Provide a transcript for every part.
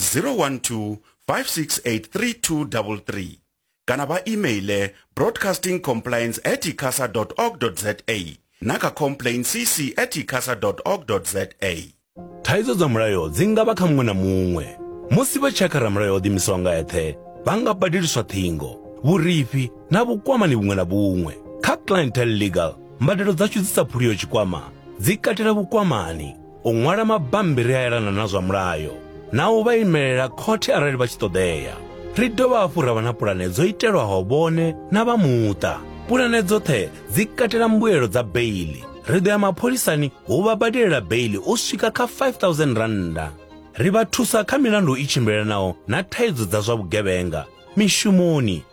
012 5683233 kana vha emaile broadcasting compliance at icasa org za na kha complain cc at icasa org za thaidzo dza mulayo dzi nga vha kha muṅwe na muṅwe musi vha tshakha ramulayo o ḓimisaho nga eṱhe vha nga badeliswa ṱhingo vhurifhi na vhukwamani vhuṅwe na vhuṅwe kha clientele legal mbadelo dzashu dzi sa phuliyo tshikwama dzi katela vhukwamani u ṅwala mabambiri a elana na zwa mulayo na u vha imelela khothe arali vha tshi ṱoḓea ri dovha hafhu ra vha na pulane dzo itelwaho vhone na vha muṱa pulane dzoṱhe dzi katela mbuelo dza beili ri ḓo ya mapholisani hu vha badelela beili u swika kha 5000 rannda ri vha thusa kha milandu i tshimbilelanaho na thaidzo dza zwa vhugevhenga mishumoni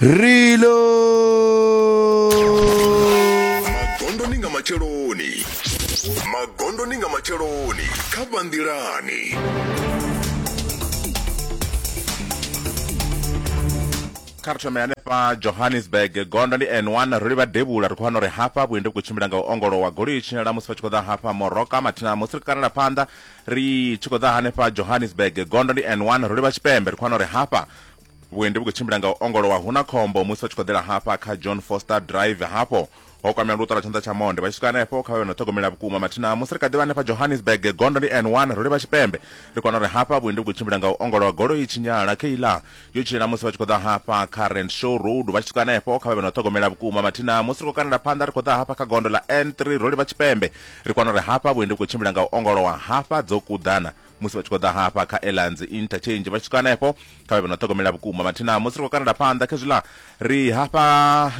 Reload. magondoni nga matsheloni magondoni nga matsheloni kha banḓilani kha ri thome hanefha johannesburg gondo ndi n1 ro livha devhula ri khou wana uri hafha vhuendi vhu khou tshimbila nga u ongolowa goloi i tshinyala musi vha tshi khou ḓa hafha moroka mathina musi ri khou kanela phanḓa ri tshi khou ḓa hanefha johannesburg gondo ndi n 1 ro livha tshipembe ri khou wana uri hafha vhuendi vhu khou tshimbila nga u ongolowa hu na khombo musi vha tshi khou ḓela hafha kha john foster drive hafho ho kwamea luṱo lwa tshanḓa tsha monde vha tshi swika hanefho kha vha vhe no ṱhogomela vhukuma mathina musi ri kha ḓivha hanefha johannesburg gondo ndi n 1 ro livha tshipembe ri kona uri hafha vhuendi vhu khou tshimbila nga u ongolowa golo i tshinyala keiḽa yo tshila musi vha tshi khou ḓa hafha kha rand show road vha tshi swika hanefho kha vha vhe na u ṱhogomela vhukuma mathina musi ri khou kanela phanḓa ri khou ḓa hafha kha gondo ḽa n3 ro livha tshipembe ri kwana uri hafha vhuendi vhu khou tshimbila nga u ongolowa hafha dzo kuḓana musi vha tshi khou ḓa hafha kha elanzi interchange vha tshi swika hanefho kha vha vhe na u ṱhogomela vhukuma mathina musi ri khou kanela phanḓa khezwiḽa ri hafha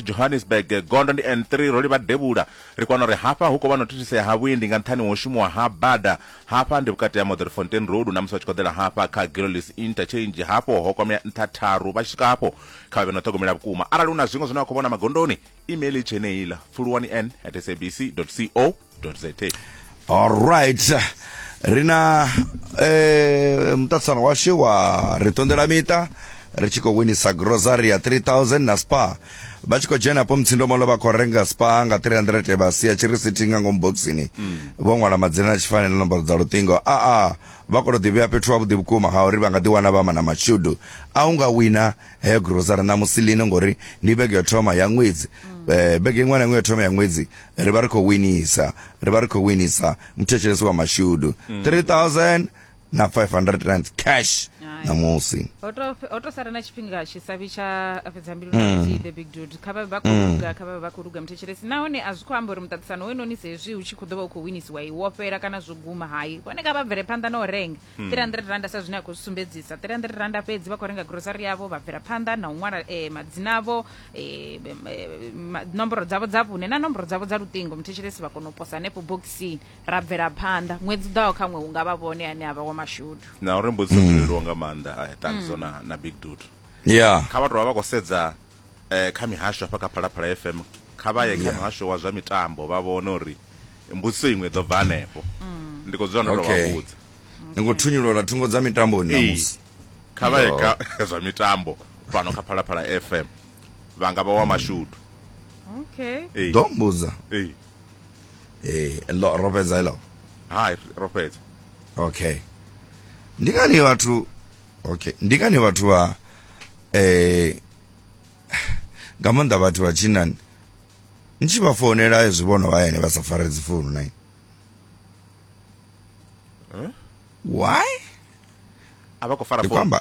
johannesburg gondo ndi n3 ro livha devhula ri kwana uri hafha hu khou vha na u thithisea ha vhuendi nga nṱhani ho shumiwa ha bada Hafha ndi vhukati ha Modderfontein Road na musi vha tshi khou ḓela hafha kha Gillies Interchange, hafho ho kwamea nṱha tharu. Vha tshi swika hafho, kha vha vhe na u ṱhogomela vhukuma. Arali hu na zwiṅwe zwine vha khou vhona magondoni, email i tshe yeneiḽa, pfuluwani en at sabc dot co dot za. Alright. Ri na eh, muṱaṱisano washu wa ri ṱonḓela miṱa ri tshi khou winisa grocery ya 3000 na spa vha tshi khou dzhena hafho mutsindomolo vha khou renga spa nga 300 vha sia tshirisiti nga ngomu boxini vho ṅwala madzina na tshifanela nomboro dza luṱingo aa vha khou tou ḓivhea fhethu havhuḓi vhukuma ha uri vha nga ḓiwana vha mana mashudu a u nga wina heyo grosara ṋamusi lino ngori ndi vhege yo thoma ya ṅwedzi eh, vhege iṅwe na iṅwe yo thoma ya ṅwedzi ri vha ri khou winisa ri vha ri khou winisa muthetshelesi wa mashudu 3000 na 500 rand cash Hai. namusi ho to- ho to sara na tshifhinga tshisabi tsha fhedza mbilu na nthihi, the big dude kha vhavhe vha khou luga kha vhavhe vha khou luga muthetshelesi nahone a zwi khou amba uri muṱaṱisano we noni sezwi hu tshi khou ḓo vha u khou winisiwa i wo fhela kana zwo guma hai vhone kha vha bvele phanḓa na u renga 300 randa sa zwine a khou zwi sumbedzisa 300 randa fhedzi vha khou renga grocery yavho vha bvela phanḓa na u ṅwala eh, madzina avho eh, em, eh, ma- nomboro dzavho dza vhune na nomboro dzavho dza luṱingo muthetshelesi vha kona u posa hanefho bokisini ra bvela phanḓa ṅwedzi u ḓaho kha ṅwe hu nga vha vhone ane a vha wa mashudu na uri mbudziso dzo leluwa nga maanḓa eh, thanziso na, na big dud ya kha vhathu vha vha khou sedza eh, kha mihasho hafha kha phalaphala fm kha vha ye kha muhasho wa zwa mitambo vha vhone uri mbudziso iṅwe i ḓo bva hanefho ndi khou dzula ndo tou Okay. vha vhudza ni khou thunyulola thungo dza mitamboni Ee. namusi kha vha ye kha zwa mitambo fhano kha phalaphala fm vha nga vha wa mashudu okay Ee. ḓo mbudza Ee. eh lo rofedza hello hai rofedza okay ndi ngani vhathu okay ndi ngani vhathu vha eh nga maanḓa vhathu vha tshinani ni tshi vha founela zwi vhono vha yene vha sa fare dzi founu na why a vha khou fara ndi khou amba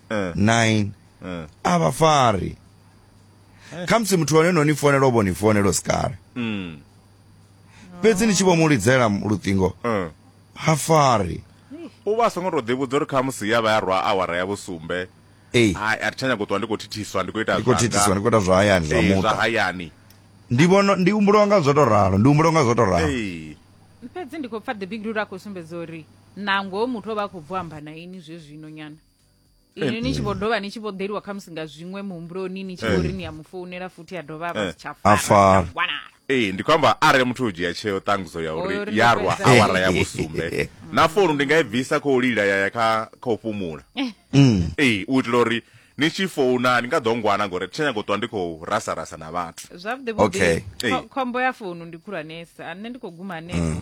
Eh. 9 Eh. a vha fari khamusi muthu wane no ni fonela u vho ni fonela u si kale Mm. fhedzi ni tshi vho mu lidzela luṱingo Eh. ha fari u vha a songo tou ḓivhudza uri khamusi ya vha ya rwa awara ya vhusumbe ei hai a thi tsha nyago u ṱuwa ndi khou thithiswa ndi khou ita ndi khou thithiswa ndi khou ita zwa hayani zwa Eh, zwa muṱa hayani ndi vhono ndi humbuliwa nga zwo to ralo ndi humbuliwa nga zwo to ralo Eh. fhedzi ndi khou pfa the big rule a khou sumbedza uri nangoho muthu o vha a khou bvo amba na ini zwe zwino nyana inwi ni tshi vho dovha ni tshi vho ḓeliwa khamusi nga zwiṅwe muhumbuloni ni tshi vho ri ni ya mu founela futhi ya dovha a vha Eh. si tsha A fara fara. tsha wanala ee ndi khou amba arali muthu o dzhia tsheo ṱangudzo ya Uri uri ndo ya rwa fhedza. awara ya vhusumbe na founu ndi nga i bvisa khou lila ya ya kha kha u fhumula Mm. ee u itela uri ni tshi founa ni nga ḓo ngwana ngori thi tsha nyago u ṱwa ndi khou rasa rasa na vhathu zwavhuḓi Okay. vhuḓi Ee. khombo ya founu ndi khulwanesa nṋe ndi khou guma hanefho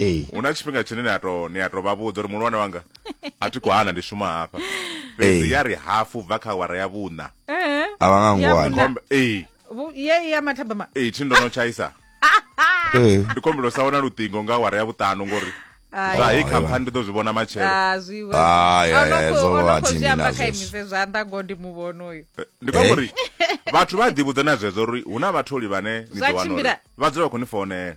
ee hu na tshifhinga tshine ni a to ni a to vha vhudza uri muhulwane wanga a thi khou hana ndi shuma hafha fhedzi Ee. ya ri hafu bva kha awara ya vhuṋa Eh, a vha nga Ya ngwana vhuṋa. Khombe- ee vhu- ye ya mathabama ee thi ndo no tshaisa ee ndi kombelo sa wana luṱingo nga awara ya vhuṱanu ngori Ai. zwa hei khamphani ndi ḓo zwi vhona matshelo Ah, zwi vha- Ah, ya, Ono ya, khou- zwo ono vha khou zwi dini amba nazwo. kha imise zwanḓa ngo ndi muvhona uyu Eh, ndi kwa uri vhathu vha ḓivhudza na zwezwo uri hu na vhatholi vhane ni Zwa ḓo wana uri tshimbila. vha dzula vha khou ni founela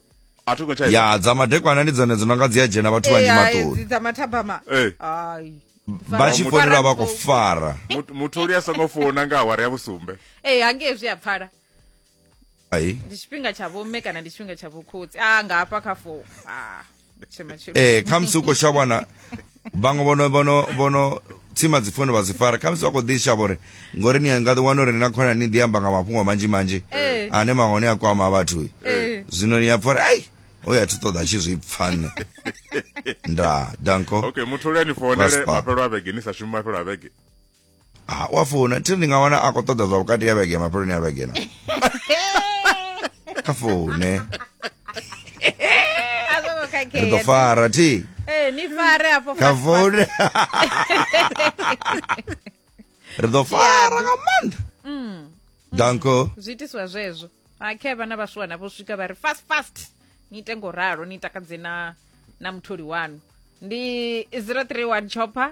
a thi ngo tsha ya dza madekwana ndi dzone dzi no nga dzi a dzhena vhathu vhanzhi Eh, ai, maṱoni dzi dza mathabama Eh. ai vha tshi founela vha khou fara Mut- mutholi a songo founa nga awara ya vhusumbe ee Eh, hangei zwi a pfala ai ndi tshifhinga tsha vhomme kana ndi tshifhinga tsha vhokhotsi a nga hafha kha fou a tshema tshema ee khamusi u khou shavha wana vhaṅwe vhono vhono vhono tsima dzi founu vha dzi fara khamusi vha khou ḓi shavha uri ngori ni nga ḓi wana uri ni na khona ni ḓi amba nga mafhungo manzhi manzhi Ee. ane mahone a kwama vhathu Ee. zwino ni a pfa uri ai o ya thi ṱoḓa tshi zwi pfa nṋe nda danko okay muthu luyani founele Vaspa. mafhelo a vhege ni sa shumi mafhelo a vhege ha u a founa thi ndi nga wana a khou ṱoḓa zwa vhukati ya vhege mafheloni ya vhege na kha foune a zwo ngo ri ḓo khakhea fara thi Eh, ni fare afho kha foune ri ḓo fara nga maanḓa danko zwi itiswa zwezwo akhe vhana vha swiwana vho swika vha ri fast fast ni ite ngo ralo ni takadze na na mutholi wanu ndi 031 chopper